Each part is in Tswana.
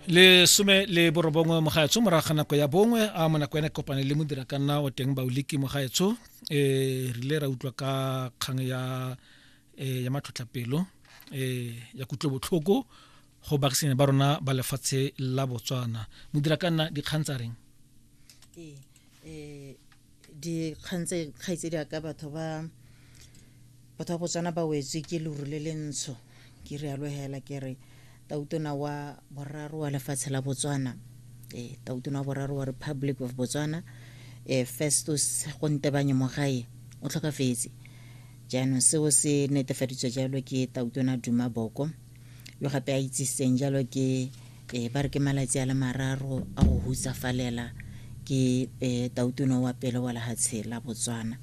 lesome le borobongwe mogaetsho morago ga nako ya bongwe a mo nako ena kopane le modira ka nna o teng baoliki mogaetsho um re rile ra utlwa ka kgang ya um ya matlhotlhapelo um ya kutlobotlhoko go baagisane ba rona ba lefatshe la botswana modira ka nna dikgang tsa reng um dikgang tse kgaitsedi ya ka batho ba batho ba botswana ba wetswe ke leru le le ntsho ke rialo hela ke re tautona wa boraro wa lefatshe la botswana um tautona wa boraro wa republic of botswana um festus gontebanye mogae o tlhokafetse jaanong seo se netefaditswe jalo ke tautona duma boko yo gape a itsisitseng jalo ke e ba re ke malatsi a le mararo a go hutsafalela ke e tautona wa pele wa lehatshe la botswana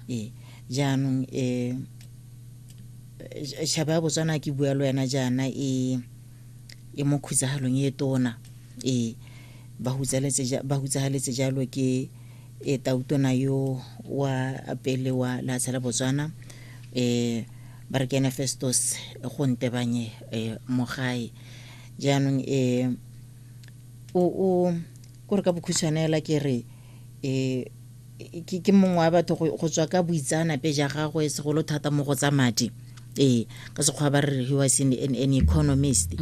e jaanong e shaba ya botswana ke bua le wena jaana e e mo khutsagalong e tona e ba hutsagaletse jalo ke e tautona yo wa pele wa lehatshe la botswana um ba re kene festos go ntebanye eh, mogae jaanong eh, o o kore ka bokhutshwanela ke re eh, ke ke mongwe wa batho go go tswa ka boitsaanape ja gagwe segolo thata mo go tsa madi ee ka sekgwa ba re he was an, an, an economist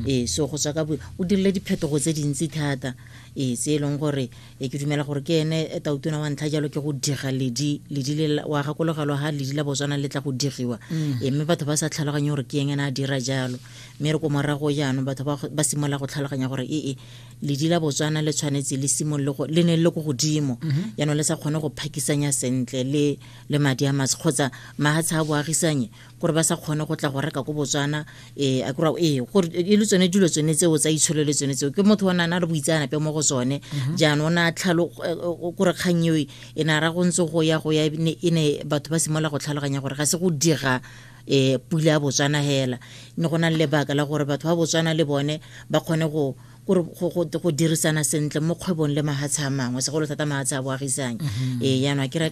ee so go tswa ka bo- o dirile diphetogo tse dintsi thata ee tse e leng gore e ke dumela gore ke ene e tautona wa ntlha jalo ke go diga ledi ledi le wa gakologelwa ga ledi la botswana le tla go digiwa mm. e mme batho ba sa tlhaloganye gore ke eng ena a dira jalo mme re ko morago jaanong batho ba simolola go tlhaloganya gore ee ledi la botswana le tshwanetse le simolole le ne le ko godimo mm-hmm. jaanong le sa kgone go phakisanya sentle le le madi a matse kgotsa mahatsha a boagisanye gore ba sa kgone go tla go reka ko botswana um a kry ee gore e le tsone dilo tsone tseo tsa itsholo le tsone tseo ke motho o ne a na le boitseanape mo go tsone mhm. jaanong o ne a tlhalo eh, eh, kore kgang eo e ne a ra go ntse go ya go ya e ne batho ba simolola go tlhaloganya gore ga se go dira um pula ya botswana fela ne go na le lebaka la gore batho ba botswana le bone ba kgone go go dirisana sentle mo kgwebong le mahatshe a mangwe segolo thata mahatshe a boagisang mhm. ee jaanong a kry